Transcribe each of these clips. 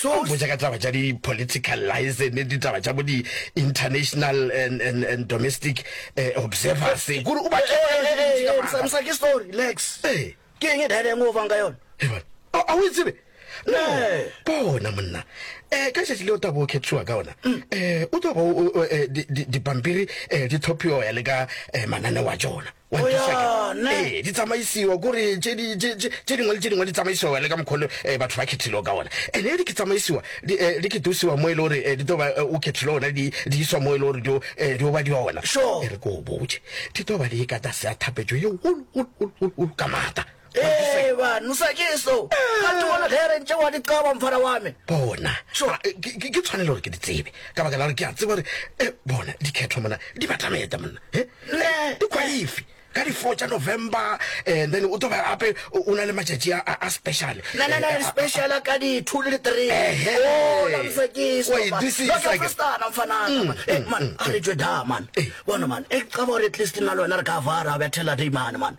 So botša ka taba tša di political liaison, di taba tša bo di international and, and, and domestic eh, observers. Eh, Kuri uba tšeo ka lešo dintši ka maaka. Samsa ke story, Lex. Eh. Ke enge dada enge o fang ka yona? Evan, a a o e tsebe? No, bona monna. Eh, ka šetši leo tabo o khetšiwa ka ona. Eh, o tlo ba o- o- o, eh, di- di- dipampiri eh, di tlhophiwa ya le ka eh, manane wa tšona. One, two, second. Ee, di tsamaisiwa kore tše dingwe le tše dingwe di tsamaisiwa le ka mokgole eh, batho ba khethilego ka ona ene eh, di ke tsamaisiwa di eh, ke tusiwa mo e le gore di toba o khethile ona di iswa mo e le gore di o ba di ona e re ko o botse di toba di e ka tlase ya thapetso ye golo ka maata Ee, banu sa ke so. Ga te bona ge re ntše wa di qaba mfana wa me. Bona. Sure. Ah, eh, ke- ke ke tshwanelo gore ke di tsebe ka baka la gore ke a tseba gore eh, bona dikgetho mona di batameta monna Eh, Ne. di khwaifi ka di-four tša november and then o tlo ba gape o o na le matšatši a- a a special Na na na Eh, a- special ka di 2 le di 3. Ehe. Oh, la msa ke so. Wa e man. disisa Lo ke ke. festana mfana. man. Eh man, a re tšwe da man. Eh. Bona man, e qaba gore at least na le wena re ka vara ba thela dei man man.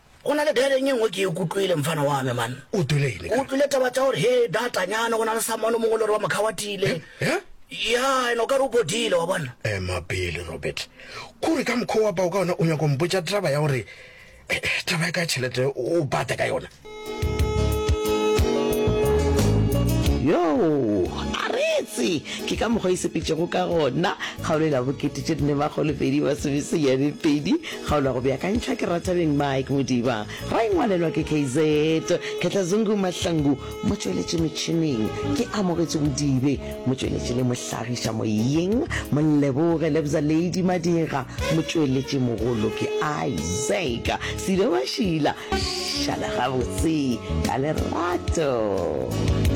Go na le bjale nge ngwe ke e kutlwile, mfana wa me, man. O utlwile eng? O utlwile taba tša gore, he, data nyana, go na le someone o mongwe le gore wa mokhawathile. He? Ya, ene o ka re o bodile, wa bona. Ema pele, Robert. Kore ka mokgwa wa pao ka ona o nyako mpotša taba ya gore eh, eh, taba ya ka tšhelete o bata ka yona. Yo, a retse ke ka mokgwa e sepetšego ka gona kgaolo e la bokete tše nne makgolopedi masomeseyane pedi Kgaolo ya go beakantšha ke Rathabeng Mike Modiba, ra e ngwalelwa ke KZ Khetlazungu Mahlangu, motšweletši metšhineng ke Amogetše Bodibe, motšweletši le mohlagiša moyeng Molleboge Lebza Lady Madira, motšweletši mogolo ke Isaac Silo Mashila. Šala gabotse ka lerato.